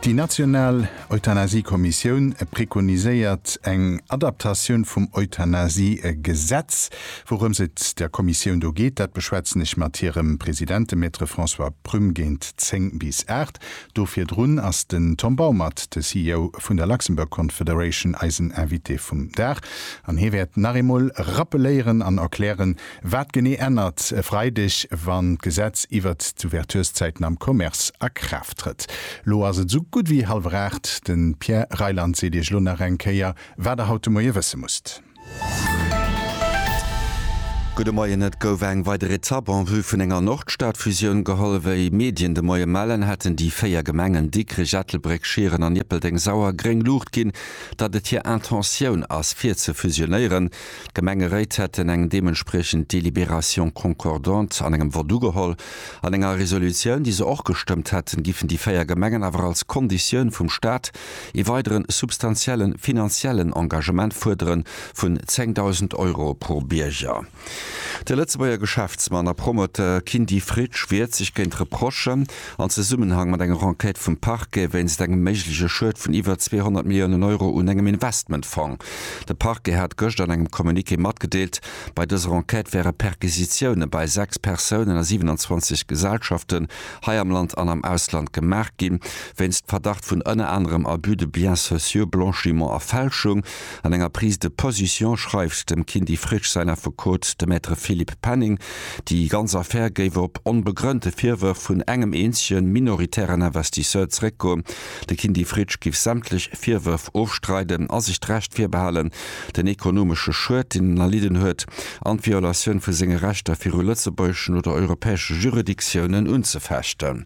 Déi national Euthanasie-Kommissioun prekoniséiert eng Adaptatioun vum Euthanasie-Gesetz. Wourëms et der Kommissioun do geet, dat beschwätzen ech mat hirem President, dem Maître François Prum, géint 10 bis 8. Do virdrun ass den Tom Baumert, de CEO vun der Luxembourg Confederation, eisen Invité vum Dag an hie wäert nach eemol rappeléieren an erklären, Wat genee ännert e Freideg, wann d'Gesetz iwwert d'Ouverturszäiten am Commerce a Kraaft trëtt? Lo ass et esou gutt wéi hallwer aacht. De Pierre Reyland seet Iech lo nach eng Kéier, wat Der haut de Moie wësse musst. Gudde Moien. Et gouf eng weider Etapp en vue vun enger Nordstadfusioun geholl. Wéi Medien de Moie mellen, hätten déi véier Gemengen Dikrech, Ettelbréck, Schieren an Ierpeldeng Sauer gréng Luucht ginn, datt et hir Intentioun ass, fir ze fusionéieren. D'Gemengeréit hätten eng deementspriechend Délibération concordante an engem Vott ugeholl. An enger Resolutioun, déi se och gestëmmt hätten, giffen déi véier Gemengen awer als Konditioun vum Stat ee weidere substantielle finanziellen Engagement fuerdere vun 10.000 Euro pro Bierger. De Lëtzebuerger Geschäftsmann a Promoteur Kindy Fritsch wiert sech géint d'Reprochen, an Zesummenhang mat enger Enquête vum Parquet wéinst engem méigleche Schued vun iwwer 200 Milliounen Euro un engem Investmentfong. De Parquet hat gëscht an engem Communiqué matgedeelt, bei dëser Enquête wäre Perquisitioune bei 6 Persounen a 27 Gesellschaften hei am Land an am Ausland gemaach gi wéinst Verdacht vun ënner anerem Abus de biens sociaux, Blanchiment a Fälschung. An enger Prise de position schreift dem Kindy Frisch säin Affekot, de Maître Philippe Penning, déi ganz Affär géif op onbegrënnte Virwërf vun engem eenzege minoritären Investisseur zeréckgoen. De Kindy Frisch géif sämtlech Virwërf ofstreiden a sech d'Recht virbehalen, den ekonomesche Schued, deen en erlidden huet, an d'Violatioun vu senge Rechter viru lëtzebuergeschen oder europäesche Juridictiounen unzefechten.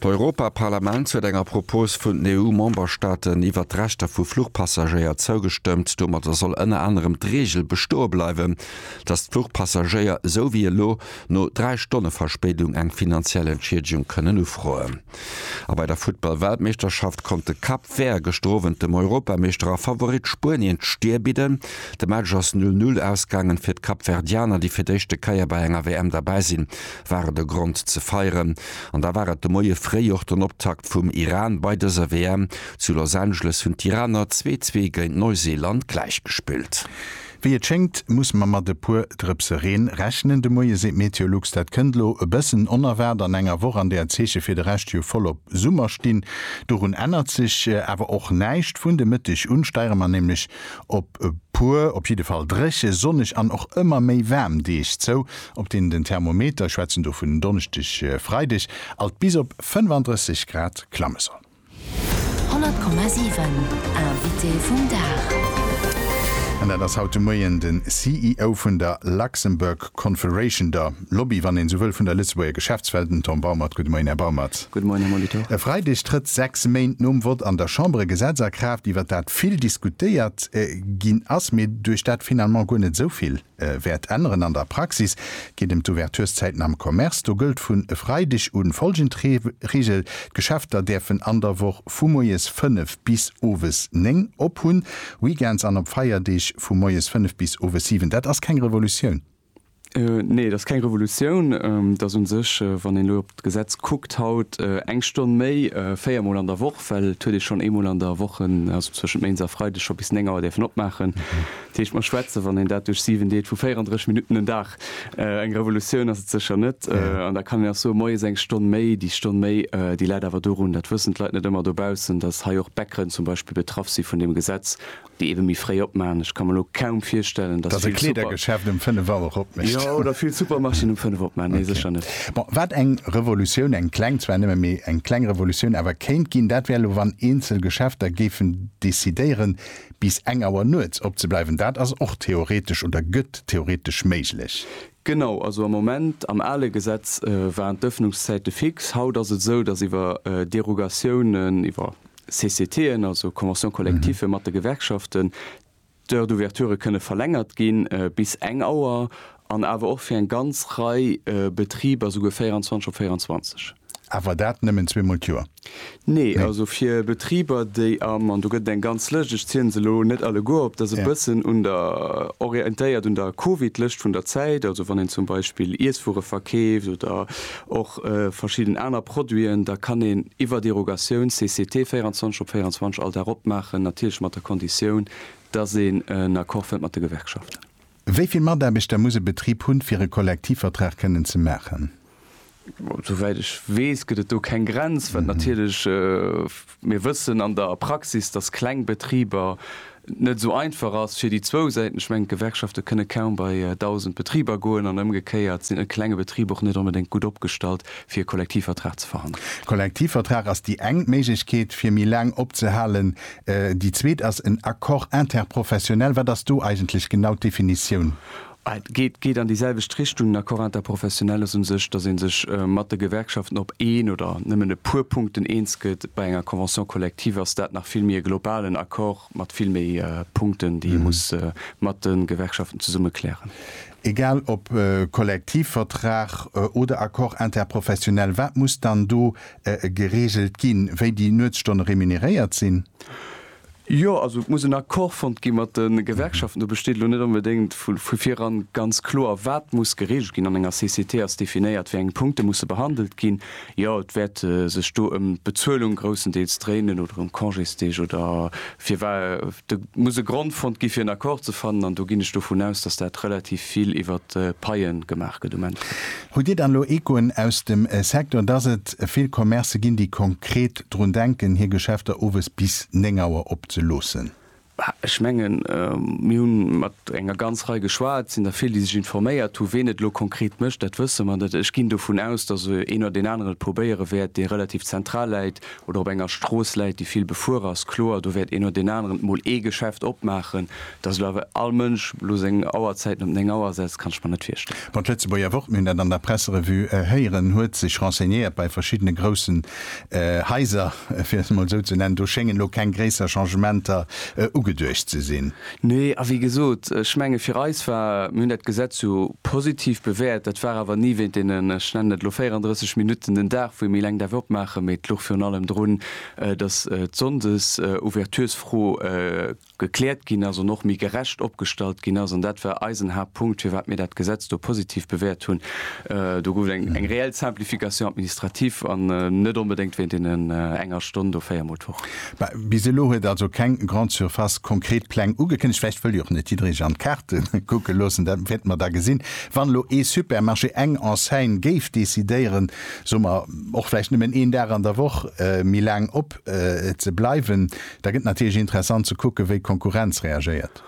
D'Europaparlament huet enger Propos vun den EU-Memberstaaten iwwert d'Rechter vu Fluchpassagéier zougestëmmt. Domadder soll ënner anerem d'Reegel bestoe bleiwen, datt d'Fluchpassagéier, esou wéi elo, no dräi Stonne Verspéidung eng finanziell Entschiedegung kënnen ufroen. A bei der Futtball-Weltmeeschterschaft konnt de Cap Vert gëschter Owend dem Europameeschter a Favorit Spuenien d'Stier bidden. De Match ass 'null Null' ausgaangen fir d'Kapverdianer, déi fir d'éischte Kéier bei enger WM derbäi sinn. war et e Grond ze feieren an da war et de Moie fréi och den Optakt vum Iran bei dëser WM. Zu Los Angeles hunn d'Iraner zwee zwee géint Neuseeland gläich gespillt. Wéi et schéngt muss mer mat e puer Drëpse Reen rechnen de Moie, seet Meteolux. Dat kënnt lo e bëssen onerwaart an enger Woch, an där d'Zeeche fir de Rescht jo voll op Summer stinn. Dorun ännert sech awer och näischt. Vun de Mëtteg un steiere mer nämlech op e puer op jidde Fall dréche, sonneg an och ëmmer méi waarm Deeg zou. Op den den Thermometer, schwätzen do vun Donneschdeg, Freideg, alt bis op 35 Grad klamme soll. 100,7 Invité vum Dag. An dat ass haut de Moien de CEO vun der Luxembourg Confederation, der Lobby, wann een esou wëll, vun der Lëtzebuerger Geschäftswelt, den Tom Baumert. Gudde Moien, Här Baumert. Gudde Moien, Här Molitor. E Freideg trëtt, sechs Méint nom Vott an der Chamber, e Gesetz a Kraaft, iwwert dat vill diskutéiert ginn ass, mee duerch dat finalement guer net esou vill. wäert änneren. An der Praxis geet em d'Ouverturszäiten am Commerce. Do gëllt vun e Freideg un folgend Reegel, D'Geschäfter däerfen an der Woch vu moies 5 bis owes 9 op hunn, Weekends an op Feierdeeg vu moies 5 bis owes 7. Dat ass keng Revolutioun. Nee, et ass keng Revolutioun. Et ass u sech, wann een elo op d'Gesetz kuckt haut, eng Stonn méi, véier Mol an der Woch, well et huet ee schonn eemol an der Woch, also zwëschent Méinds a Freideg, scho bis 9 Auer däerfen opmaachen. Dat heescht, mer schwätzen, wann een dat duerch 7 deelt, vu 34 Minutten en Dag. Eng Revolutioun ass et sécher net. An da kann een och soen, moies eng Stonn méi, déi Stonn méi, déi läit awer dorun, dat wëssen d'Leit net ëmmer dobaussen, dass hei och d'Bäckeren zum Beispill betraff si vun deem Gesetz, déi ebe méi fréi opmaachen. Ech ka mer elo kaum virstellen, dass vill Super. Dass e Kleedergeschäft um 5 Auer och opmécht. Jo, oder vill Supermarchéen um 5 opmaachen. Nee, sécher net. Bon, wat eng Revolutioun, eng kleng zwar nëmme, mee eng kleng Revolutioun awer kéint ginn, dat wär elo, wann eenzel Geschäfter géifen decidéieren, bis eng Auer nuets opzebleiwen, dat ass och theoretesch oder gëtt theoretesch méiglech. Genau, also am Moment, am ale Gesetz waren d'Öffnungszäite fix. Haut ass et esou, datt iwwer Derogatiounen, iwwer CCTen, also Conventions collectives mat de Gewerkschaften, d'Heures d'ouverture kënne verlängert ginn bis eng Auer an awer och fir eng ganz Rei Betriber souguer 24 op 24. Awer dat nëmmen zweemol d'Joer? Nee, also fir Betriber, déi am, an do gëtt et eng ganz Lëscht, ech zielen se elo net alleguer op, dat ass e bëssen un der, orientéiert un der Covid-Lëscht vun der Zäit, also wann een zum Beispill Iesswuere verkeeft oder och verschidden aner Produiten, da kann een iwwer Derogatioun, CCT, 24 op 24 all Dag opmaachen, natierlech mat der Konditioun, dass een en Accord fënnt mat de Gewerkschaften. Wéi vill Mataarbechter muss e Betrib hunn, fir e Kollektivvertrag kënnen ze maachen? Souwäit ech weess, gëtt et do keng Grenz, wat natierlech, mir wëssen an der Praxis, dass kleng Betriber net esou einfach ass fir déi zwou Säiten. Ech mengen, d'Gewerkschafte kënne kaum bei 1.000 Betriber goen an ëmgekéiert sinn e klenge Betrib och net onbedéngt gutt opgestallt, fir e Kollektivvertrag ze verhandelen. Kollektivvertrag ass déi eng Méiglechkeet, fir méi laang opzehalen, Déi zweet ass en Accord interprofessionnel. Wat ass do eigentlech genau d'Definitioun? Et geet an déi selwecht Richtung. En Accord interprofessionnel ass u sech, datt ee sech mat de Gewerkschaften op een oder nëmmen e puer Punkten eens gëtt. Bei enger Convention collective ass dat nach vill méi e globalen Accord mat vill méi Punkten, déi ee muss mat de Gewerkschaften zesumme klären. Egal ob Kollektivvertrag oder Accord interprofessionnel, wat muss dann do gereegelt ginn, wéi déi Nuetsstonne remuneréiert sinn? Jo, also et muss en Accord fonnt gi mat de Gewerkschaften. Do besteet elo net onbedéngt vu viran ganz kloer, wat muss gereegelt ginn. An enger CCT ass definéiert, wéi eng Punkte musse behandelt ginn. Jo, et wäert sech do ëm d'Bezuelung groussendeels dréinen oder ëm Congésdeeg oder fir wa. Do muss e Grond fonnt gi fir en Accord ze fannen an do ginn ech dovun aus, datt dat relativ vill iwwert d'Paie gemaach gëtt um Enn. Hutt Dir dann elo Echoen aus dem Secteur, dass et vill Commercë ginn, déi konkret drun denken, hir Geschäfter owes bis 9 Auer opzeloossen? Ech mengen, mir hu mat enger ganz Rei geschwat, et sinn der vill, déi sech informéiert hunn. Ween et elo konkret mécht, dat wësse mer net. Ech ginn dovun aus, dass een oder deen anere probéiere wäert, dee relativ zentral läit, oder op enger Strooss läit, déi vill befuer ass, kloer, do wäert een no deen aneren mol ee Geschäft opmaachen. Dass elo awer all Mënsch elo seng Auerzäiten op 9 Auer setzt, kann ech mer net virstellen. Bon, d'Lëtzebuerger Wort, mir hunn dat an der Presserevue héieren, huet sech renseignéiert bei verschiddene groussen Haiser, fir et emol esou ze nennen, do schéngen elo keng gréisser Changementer ugeduecht ze sinn. Nee, a wéi gesot, ech menge fir eis war, mir hunn dat Gesetz jo positiv bewäert, dat war awer ni wéint deenen, ech nennen et elo 34 Minutten den Dag, wou ee méi laang däerf opmaachen, mee et luch virun allem drun, datt d'Sonndesouverturesfro gekläert ginn ass an och méi gerecht opgestallt ginn ass. An dat war eisen Haaptpunkt, firwat mir dat Gesetz do positiv bewäert hunn. Do gouf et eng reell Simplification administrative an net onbedéngt wéint deenen enger Stonn do véier Mol d'Woch. Mä bis elo huet also keng Grande Surface konkret Pläng ugekënnegt. Vläicht wëll jo och net jidderee sech an d'Kaarte kucke loossen. Dat wäerte mer da gesinn. Wann elo ee Supermarché, eng Enseigne géif decidéieren, soe mer och vläicht nëmmen een Dag an der Woch méi laang op ze bleiwen, da gëtt natierlech interessant ze kucken, wéi d'Konkurrenz reagéiert.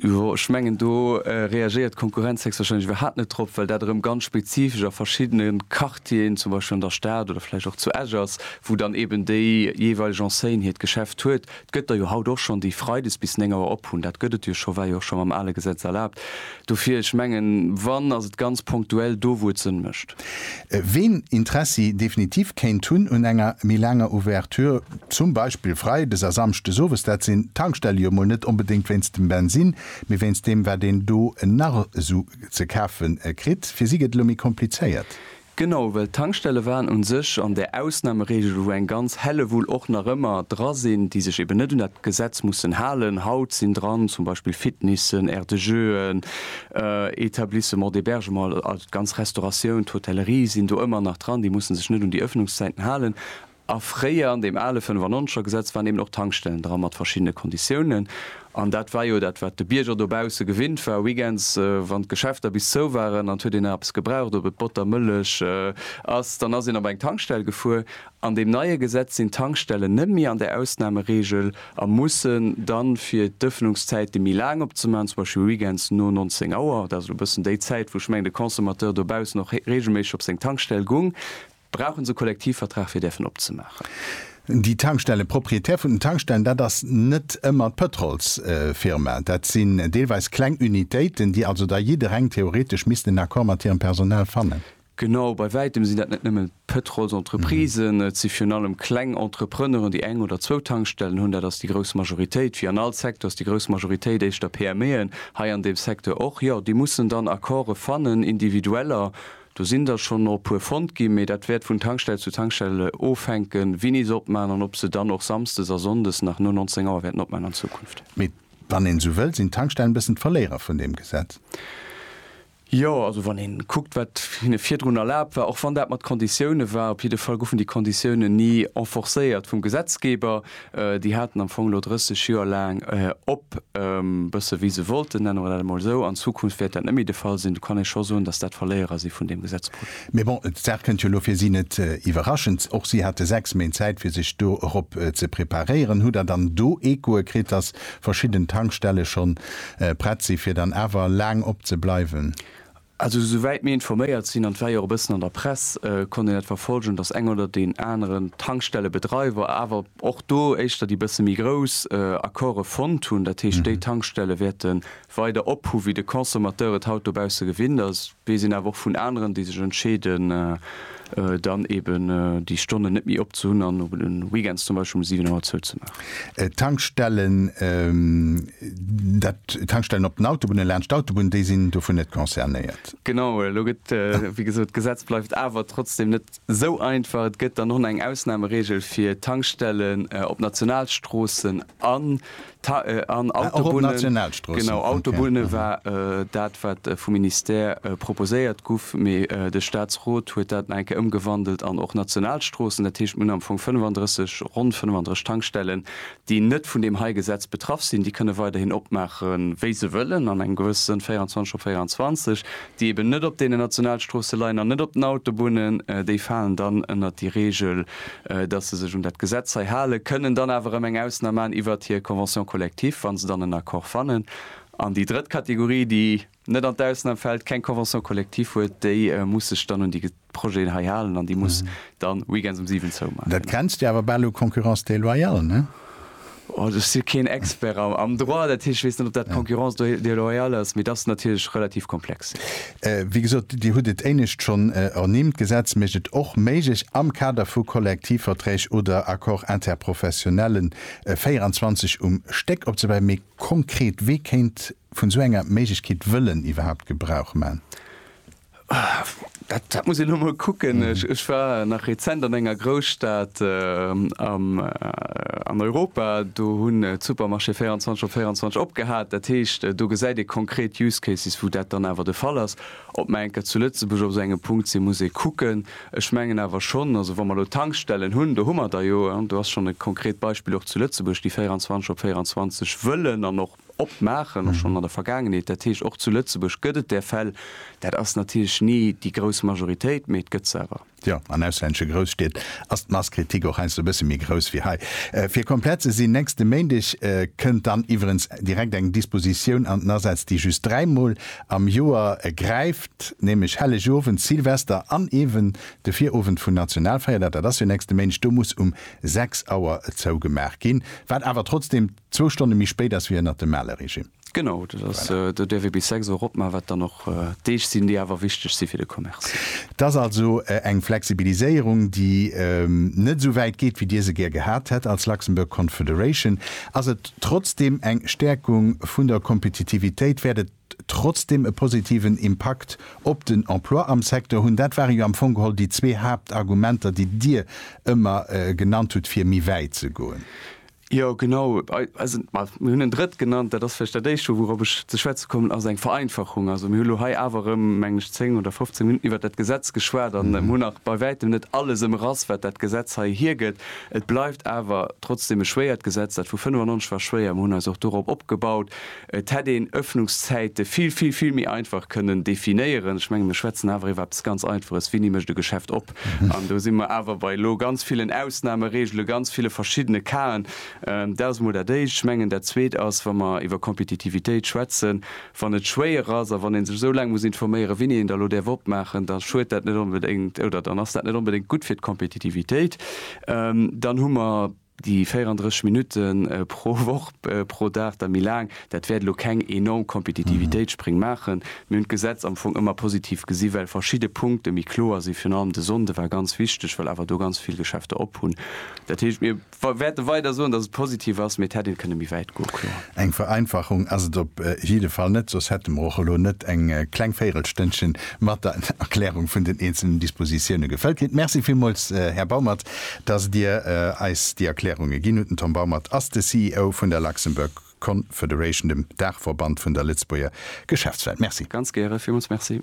Jo, ech mengen, do reagéiert d'Konkurrenz héchstwahrscheinlech iwwerhaapt net drop, well dat erëm ganz spezifesch a verschiddene Quartieren, zum Beispill an der Stad oder vläicht och zu Esch ass, wou dann eeben déi jeeweileg Enseigne hiert Geschäft huet. Et gëtt der jo haut och schonn, déi freides bis néng Auer op hunn. Dat gëtt et jo scho, war jo och scho mam ale Gesetz erlaabt. Dofir, ech mengen, wann, ass et ganz punktuell do, wou et Sënn mécht. Ween Interessi definitiv kéint hunn un enger méi laanger Ouverture, zum Beispill freides a samschdes owes, dat sinn d'Tankstelle jo mol net onbedéngt wéinst dem Bensin, mee wéinst deem wat een do nach esou ze kafe kritt. Fir si gëtt et elo méi komplizéiert. Genau, well d'Tankstelle waren un sech an där Ausnameregel, wou eng ganz Hellewull och nach ëmmer dra sinn, déi sech eben net un dat Gesetz mussen halen. Haut sinn dran zum Beispill Fitnessen, Aire de jeuxen, Etablissements d'hébergement, also d'ganz Restauratioun, d'Hotellerie sinn do ëmmer nach dran, déi mussen sech net un déi Ëffnungszäiten halen. A fréier, an deem ale 95 er Gesetz, waren eben och Tankstellen dra mat verschiddene Konditiounen. An dat war jo dat, wat de Bierger dobausse gewinnt war, weekends, wann d'Geschäfter bis zou waren an et huet een nach eppes gebraucht, ob et Botter, Mëllech ass, dann ass een op eng Tankstell gefuer. An deem neie Gesetz sinn d'Tankstellen net méi an der Ausnameregel a mussen dann, fir d'Ëffnungszäite méi laang op ze man, zum Beispill Weekends no 19 Auer, dat ass elo e bëssen déi Zäit, wou ech mengen, de Consommateur dobaussen och reegelméisseg op seng Tankstell gung, brauchen se e Kollektivvertrag, fir däerfen op ze maachen. Déi Tankstellen, d'Propriétaires vun den Tankstellen, dat ass net ëmmer d'Pëtrolsfirma. Dat sinn deelweis kleng Unitéiten, déi also da jiddereng theoretesch missten en Accord mat hirem Personal fannen. Genau, bei wäitem sinn dat net nëmmen d'Pëtrolsentreprisen, et si virun allem kleng Entrepreneuren, déi eng oder zwou Tankstellen hunn, dat ass déi grouss Majoritéit. Wéi an all Secteur ass déi grouss Majoritéit éischter PMEen, hei an deem Secteur och. Jo, déi mussen dann Accorde fannen, individueller, do sinn der schonn och e puer fonnt ginn, mee dat wäert vun Tankstell zu Tankstell ofhänken, wien is opman an ob se dann och samsdes a sonndes nach no 19 Auer wäerten opman an Zukunft. Mee wann een esou wëll, sinn d'Tankstellen e bëssen d'Verléierer vun deem Gesetz? Jo, also wann ee kuckt, wat hinne virdrun erlaabt war, och wann dat mat Konditiounen war, op jidde Fall goufen déi Konditiounen ni enforcéiert vum Gesetzgeber. Déi haten am Fong elo 30 Joer laang op, e bësse wéi se wollten, nenne mer dat emol esou. An Zukunft wäert dat net méi de Fall sinn. Do kann ee scho soen, datt dat Verléierer si vun deem Gesetzprojet. Mee bon, d'Saach kënnt jo elo fir si net iwwerraschend. Och si hate sechs Méint Zäit, fir sech do erop ze preparéieren. Hutt Der dann do Echoe kritt, datt verschidden Tankstelle schonn prett sinn, fir dann awer laang op ze bleiwen. Also esou wäit mir informéiert sinn, an et war jo och e bëssen an der Press, konnt een dat verfolgen, datt eng oder deen aneren Tankstellebedreiwer awer och do éischter déi bësse méi grouss Accorde fonnt hunn. Dat heescht, déi Tankstelle wäerten weider ophu wéi de Consommateur et haut dobausse gewinnt ass. Weess een awer och vun aneren, déi sech entscheeden, dann eben déi Stonnen net méi op ze hunn an op den Weekends zum Beispill um 7 Auer zou ze maachen. D'Tankstellen, dat, d'Tankstellen op den Autobunnen, laanscht d'Autobunn, déi sinn dovun net concernéiert? Genau, elo gëtt, wéi gesot, d'Gesetz bleift awer trotzdem net esou einfach. Et gëtt dann och nach eng Ausnahmeregel fir Tankstellen op Nationalstroossen an An Autobunne war dat, wat vum Ministère proposéiert guff, mee de Staatsrot huet dat nach eng Kéier ëmgewandelt an och Nationalstroossen. Dat heescht, mir hunn am Fong 35, ronn 35 Tankstellen, déi net vun deem hei Gesetz betraff sinn. Déi kënne weiderhin opmaachen, wéi se wëllen, an engem gewësse Sënn 24 op 24. déi eben net op deenen Nationalstroosse leien an net op den Autobunnen, déi falen dann ënnert déi Regel, dass se sech un dat Gesetz hei halen, kënnen dann awer erëm eng Ausnam maachen iwwert hir Convention collective, wa se dann en Accord fannen. An déi drëtt Kategorie, déi net an d'Ausnam fält, keng Convention collective huet, déi muss sech dann un déi. Projeten hei halen an déi muss dann weekends um 7 zou maachen. Dat grenzt jo awer bal u concurrence déloyale, ne? Oh, ech si keen Expert am Droit, dat heescht, ech weess net, ob dat concurrence déloyale ass, mee et ass natierlech relativ komplex, jo. Wéi gesot, Dir hutt et éinescht schonn ernimmt, d'Gesetz mécht et och méiglech, am Kader vu Kollektivverträg oder Accords interprofessionnellen 24 um Stéck opzewäi. Mee konkret, wee kéint vun esou enger Méiglechkeet wëllen iwwerhaapt Gebrauch man? Dat muss een emol kucken. Ech war nach rezent an enger Grousstad an Europa, do hunn d'Supermarchéë 24 op 24 opgehat. Dat heescht, do gesäit ee konkret Use Cases, wou dat dann awer de Fall ass. Ob mer enker zu Lëtzebuerg op esou engem Punkt sinn, muss ee kucken. Ech mengen awer schonn, also wa mer elo Tankstellen hunn, do hu mer der jo, do ass schonn e konkret Beispill och zu Lëtzebuerg, déi 24 op 24 wëllen an och opmaachen, och schonn an der Vergaangenheet, dat heescht och zu Lëtzebuerg gëtt et där Fäll. Dat ass natierlech ni déi grouss Majoritéit, mee et gëtt se awer. Jo, an auslännesche Grousstied ass d'Masskritik och heiansdo e bësse méi grouss wéi hei. Fir komplett ze sinn, nächste Méindeg kënnt dann iwwerens direkt eng Dispositioun an den Asaz, déi just dräimol am Joer gräift, nämlech Hellegowend, Silvester an eeben de Virowend vun Nationalfeierdag. Dat ass jo nächste Méindeg. Do muss um sechs Auer zougemaach ginn, wat awer trotzdeem. Zwou Stonne méi spéit ass wéi ënnert dem ale Regime. Genau, dat ass, do däerf ee bis 6 Auer op man, wat dann och Deeg sinn, déi awer wichteg si fir de Commerce. Et ass also eng Flexibiliséierung, déi net esou wäit geet, wéi Dir se gär gehat hätt als Luxembourg Confederation. Ass et trotzdeem eng Stäerkung vun der Kompetitivitéit? Wäert et trotzdeem e positiven Impakt op den Emploi am Secteur hunn? Dat ware jo am Fong geholl déi zwee Haaptargumenter, déi Dir ëmmer genannt hutt, fir méi wäit ze goen. Jo, genau. Also, mir hunn en drëtt genannt. Dat ass vläicht dat éischt, wourop ech ze schwätze kommen, ass eng Vereinfachung. Also mir hu lo hei awer erëm, mengen ech, zéng oder fofzéng Minutten iwwert dat Gesetz geschwat an hunn nach bei wäitem net alles ëmrass, wat dat Gesetz hei hiergëtt. Et bleift awer trotzdeem e schwéiert Gesetz. Dat vu 95 war schwéier. Mir hunn eis och dorop opgebaut. Et hätt een Ëffnungszäite vill, vill, vill méi einfach kënnen definéieren. Ech menge mir schwätzen awer iwwer eppes ganz Einfaches, Winni mécht e Geschäft op? An do si mer awer bei elo ganz villen Ausnamereegele, ganz ville verschiddene Casen. Dat ass emol dat Éischt. Ech mengen dat Zweet ass, wa mer iwwer Kompetitivitéit schwätzen, wann et schwéier ass a wann ee sech esou laang muss informéieren, winni een da elo däerf opmaachen, da schuet dat net onbedéngt oder dann ass dat net onbedéngt gutt fir d'Kompetitivitéit. Dann hu mer. Déi 34 Minutte pro Woch pro Dag, da méi laang, dat wäert elo keng enorm Kompetitivitéitsspréng maachen. Mir hunn d'Gesetz am Fong ëmmer positiv gesi well verschidde Punkte méi kloer sinn. Virun allem de Sonnde war ganz wichteg, well awer do ganz vill Geschäfter op hunn. Dat heescht, mir wäerte weider soen, datt et positiv ass, mee et hätt een kënne méi wäit goe kloer. Eng Vereinfachung ass et op jidde Fall net, soss hätte mer och elo net eng kleng Véirelstënnchen mat der Erklärung vun den eenzelen Dispositiounen gefëllt kritt. Merci villmools, Här Baumert, Dass Dir eis déi Erklärunge ginn hutt. Den Tom Baumert ass de CEO vun der Luxembourg Confederation, dem Daachverband vun der Lëtzebuerger Geschäftswelt. Merci. Ganz gäre. Villmools Merci.